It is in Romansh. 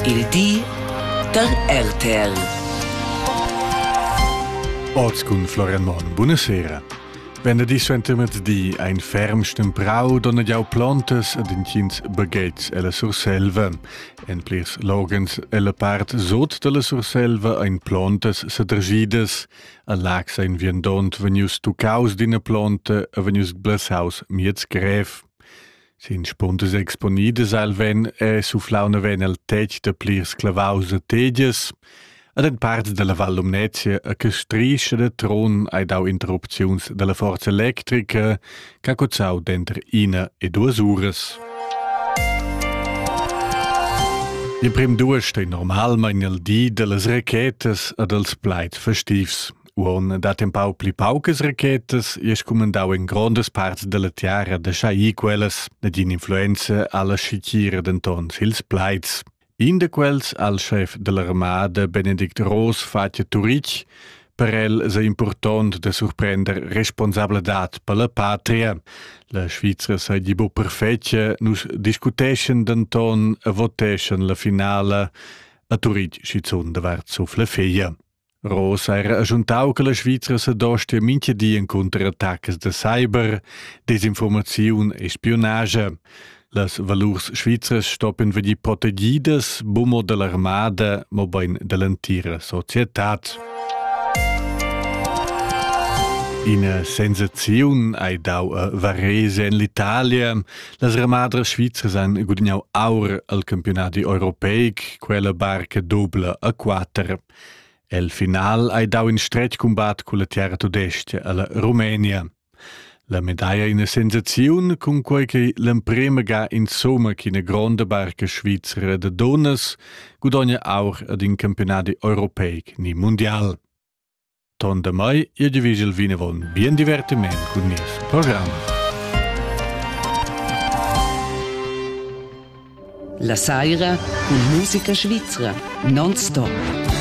Il di da RTL. Oz cun Florian Monn. Buonasera. Venerdì suentermertì ein ferm stemprau donn jau plontas ad intgins baghetgs ella Surselva. En plirs logens ella part sot dalla Surselva ein plontas sadregidas. A Lax ein viandont vegnius tuccaus d'ina plonta e vegnius blasaus miez grev. Sin spundas exponidas al ven è sufflauna ven el tetg da plirs clavaus e tegias. Ad en parts dalla Val Lumnezia a che strischa de tron hai dau interrupziuns dalla forza electrica che ha cozzau denter ina e duas uras. Il prim duas stei normalmein il di dallas rachetas e dals plaid festivs. Uon dat empau pli paucas rachetas e scumandau in grondas parts dalla tiara da schai quellas ed influenza alla schicira denton sils plaids. In da quels, al chef dell'armada Benedict Roos, fatja Turic, per el sei impurtont da surprender responsabladat per la patria. La Svizra sei di bu perfetgia, nus discuteschen denton e voteschen la finala a Turic schizun davart suf la figlia. Ross ha era agiuntau che la Svizra sedostia mintga di encunter attacas da cyber, desinformaziun e spiunage. Las valurs svizras stoppen vegnir protegidas bumo dall'armada, mobein dall'entira societad. Ina sensaziun hai dau a Varese en l'Italia. Las ramadras svizras han gudignau aur al campionat europeic, quella barca dubla a quatter. El final hai dau in stretg cumbat culla terra tudestga alla Rumenia. La medaglia ina sensaziun cun quei che l'emprema ga insomma che ina gronda barca svizra de donas gudogna aur ad in campionati europeic ni mondial. Ton da mai e divigel vinavon bien divertiment cun nies programm. La saira cun musica svizra non stop.